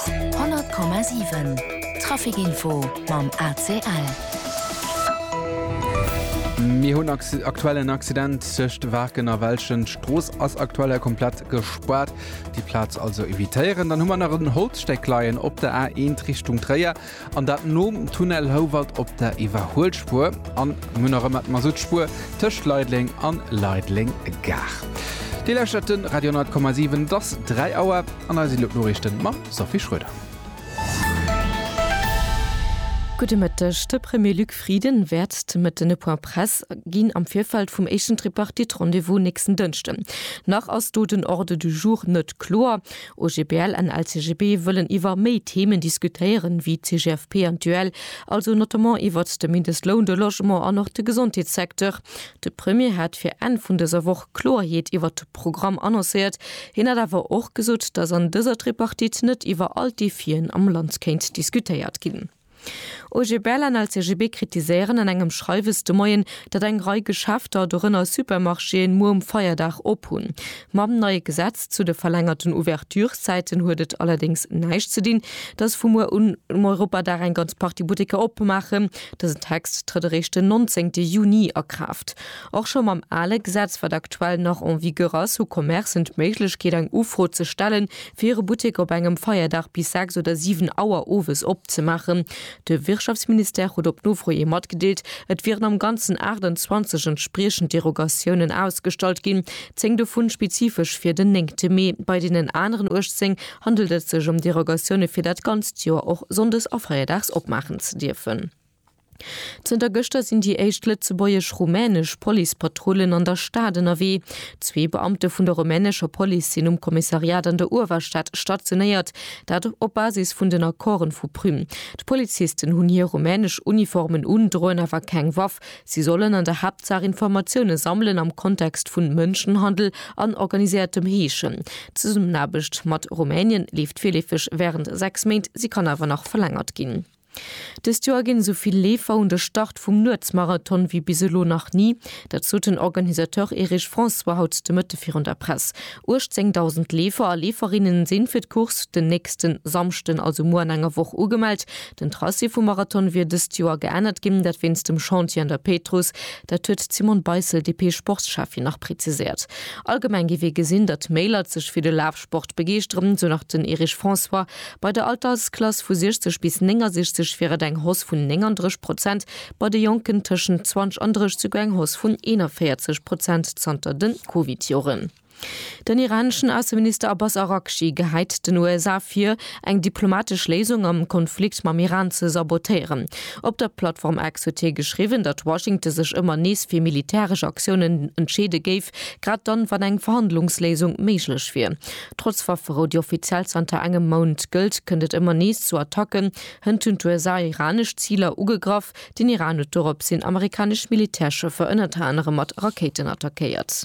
100,7 Trafic-Info mam ACL. Mir hunn aktuell en Accident tëscht Waarken a Welschen. D'Strooss ass aktuell komplett gespaart. Déi Plaz also evitéieren. Dann hu mer nach en Holzstäck leien op der A1 Richtung Tréier. An dat nom Tunnel Houwald op der Iwwerhuelspuer an mir hunn nach ëmmer d'Masutspuer tëscht Leideleng an Leideleng Gare. Dir lauschtert de Radio 10,7, et ass 3 Auer an eis elo d'Noriichten mam Sophie Schröder. Gudde Mëtteg, De Premier Luc Frieden wäert de Mëtten e Point Press ginn am Virfeld vum éischten Tripartite-Rendez-vous nächsten Dënschden. Nach ass do den Ordre du jour net kloer. OGBL an LCGB wëllen iwwer méi Themen diskutéieren, wéi d'CGFP an d'UEL, also notamment iwwert de Mindestloun, de Logement an och de Gesondheetssecteur. De Premier hat fir Enn vun dëser Woch Kloerheet iwwert de Programm annoncéiert. Hien hat awer och gesot, datt an dëser Tripartite net iwwer all d'Defien am Land kéint diskutéiert ginn. OGB Berlin a LCGB kritiséieren an engem Schreiwes de Moien, datt eng Rei Geschäfter, dorënner Supermarchéen, muer um Feierdag op hunn. Mam neie Gesetz zu de verlängerten Ouverturszäiten huet et allerdéngs näischt ze dinn, datt vu muer un um Europadag eng ganz Partie Butteker opmaachen. Dësen Text trëtt eréischt den 19 Juni a Kraaft. Och scho mam ale Gesetz, wat aktuell nach en vigueur ass, hu Commercen d'Méiglechkeet, eng Ufro ze stellen, fir e Buttek op engem Feierdag bis 6 oder 7 Auer owes opzemaachen. De Wirtschaftsministère huet op Nofro ee matgedeelt, et wieren am Ganzen 28 entspriechend Derogatiounen ausgestallt ginn, 10 dovun spezifesch fir den 9 Mee. Bei deenen aneren 18 handelt et sech ëm Derogatioune fir dat ganzt Joer och sonndes a feierdags opmaachen ze dierfen. Zënter gëschter sinn déi éischt lëtzebuergesch-rumänesch Policepatrullen an der Stad ënnerwee. Zwee Beamte vun der rumänescher Police sinn um Kommissariat an der Uewerstad stationéiert, dat op Basis vun den Accorden vu Prüm. D'Polizisten hunn hir rumänesch Uniformen un, droen awer keng Waff. Si sollen an der Haaptsaach Informatioune sammelen am Kontext vu Mënschenhandel an organiséiertem Heeschen. D'Zesummenaarbecht mat Rumänien leeft virleefeg wärend sechs Méint, si kann awer nach verlängert ginn. Dëst Joer ginn esou vill Leefer un de Start vum Nuetsmarathon wéi bis elo nach ni. Dat sot den Organisateur Erich François haut de Mëtte virun der Press. 18.000 Leefer a Leeferinne sinn fir d'Course den nächste Samschden, also muer an enger Woch ugemellt. Den Tracé vum Marathon wier dëst Joer geännert ginn, dat wéinst dem Chantier an der Péitruss. Dat huet d'Simone Beissel, DP-Sportsschäffin, nach preziséiert. Allgemeng géif ee gesinn, datt méi Leit sech fir de Laf Sport begeeschteren, sou nach den Erich François. Bei der Altersklass vu 60 bis 69 wier et eng Hausse vun 39 Prozent, bei de Jonken tëschent 20 an 30 souguer eng Hausse vun 41 Prozent zanter de Covid-Joren. Den iraneschen Ausseminister Abbas Araghchi gehäit den USA vir, eng diplomatesch Léisung am Konflikt mam Iran ze sabotéieren. Op der Plattform X huet hie geschriwwen, datt Washington sech ëmmer nees fir militäresch Aktiounen entscheede géif, grad dann, wann eng Verhandlungsléisung méiglech wier. Trotz Wafferou, déi offiziell zanter engem Mount gëllt, kënnt et ëmmer nees zu Attacken. Hënt hunn d'USA iranesch Ziler ugegraff. Den Iran huet doropshin amerikanesch Militärschëffer ënnert anerem mat Rakéiten attackéiert.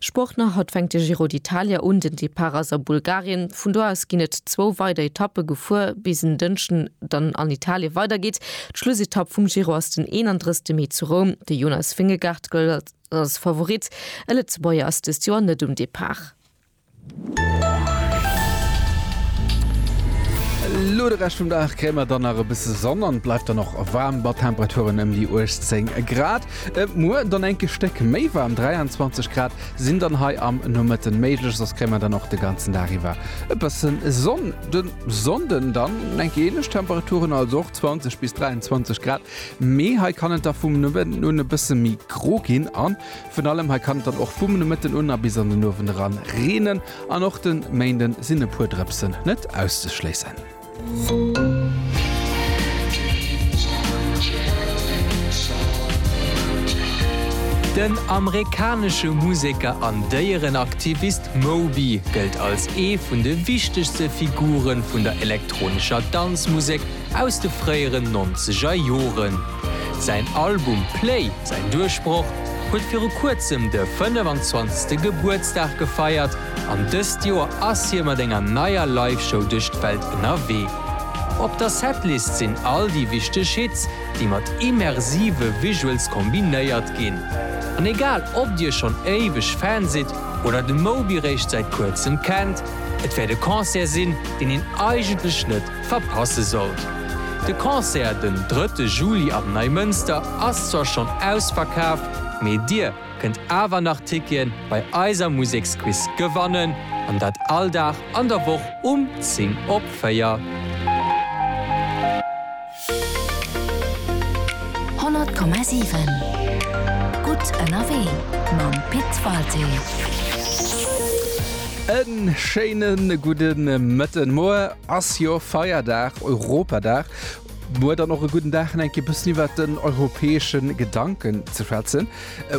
Sport nach, Haut fänkt de Giro d'Italia un. Den Depart ass a Bulgarien. Vun do aus ginn et zwou weider Etappe gefuer, bis en Dënschden dann an Italien weidergeet. D'Schlussetapp vum Giro ass den 31 Mee zu Roum. De Jonas Vingegaard gëllt als Favorit. E Lëtzebuerger ass dëst Joer net um Depart. Lo de Rescht vum Dag kréie mer dann nach e bësse Sonn an et bleift dann och waarm mat Temperaturen ëm déi 18 Grad. Muer dann enk e Stéck méi waarm, 23 Grad sinn dann hei am Nomëtten méiglech, soss kréie mer dann och de ganzen Dag iwwer e bësse Sonn. De Sonnden dann enk ähnlech Temperaturen, also och 20 bis 23 Grad, mee hei kann et da vum Nomëtten un e bësse méi gro ginn an Vun allem hei kann et dann och vum Nomëtten un a bis an den Owend eran reenen an och de Méinde sinn e puer Drëpsen net auszeschléissen. Den amerikanesche Museker an Déierenaktivist Moby gëllt als ee vun de wichtegste Figure vun der elektronescher Danzmusek, Aus de fréieren nonzeger Joren. Säin Album Play, säin Duerchbroch, huet viru kuerzem de 25. Gebuertsdag gefeiert an dëst Joer ass hie mat enger neier Live-Show duerch d'Welt ënnerwee. Op der Setlist sinn all déi wichteg Hits, déi mat immersive Visuals kombinéiert ginn. An egal ob dir schonn éiweg Fan sidd oder de Moby réischt säit kuerzem kennt, et wäert e Concert sinn, deen een eigentlech net verpasse sollt. De Concert den drëtte Juli am Neimënster ass zwar schonn ausverkaaft, mee dir kënnt awer nach Tickete bei eiser Museksquiz gewannen, an dat all Dag an der Woch um 10 op 4. Honnert Komma siwen Gutt ënnerwee mam Pit Walté. E schéine gudde Mëtten, Moie Ass jo Feierdag, Europadag. Muer dann och e gudden Dag fir eng Kéier e bëssen iwwert den europäesche Gedanken ze schwätzen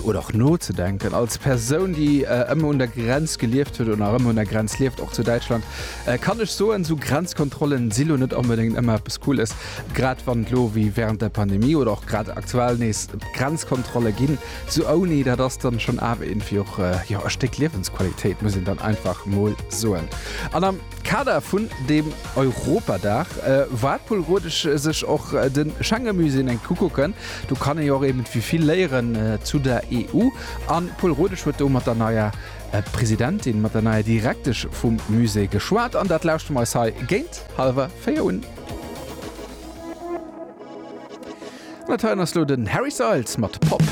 oder och nozedenken. Als Persoun, déi ëmmer un der Grenz gelieft huet oder nach ëmmer un der Grenz lieft, och zu Däitschland, kann ech soen, esou Grenzkontrollen si lo net onbedéngt ëmmer eppes Cooles. Grad wann et lo wéi während der Pandemie oder och grad aktuell nees Grenzkontrolle ginn, esou ouni, dat ass dann schonn awer iergendwéi och e Stéck Liewensqualitéit, muss een dann einfach mol soen. An am. Kader vun dem Europadag war d'Pol Rodesch sech och de Schengemusée enk ukucken. Do kann ee jo och eben wie vill léieren zu der EU. An d'Pol Rodesch huet do mat der neier Presidentin, mat der neier Direktesch vum Musée geschwat. An dat lauschte mer eis hei géint hallwer 4 un. An dat heien ass elo den Harry Styles mat Pop.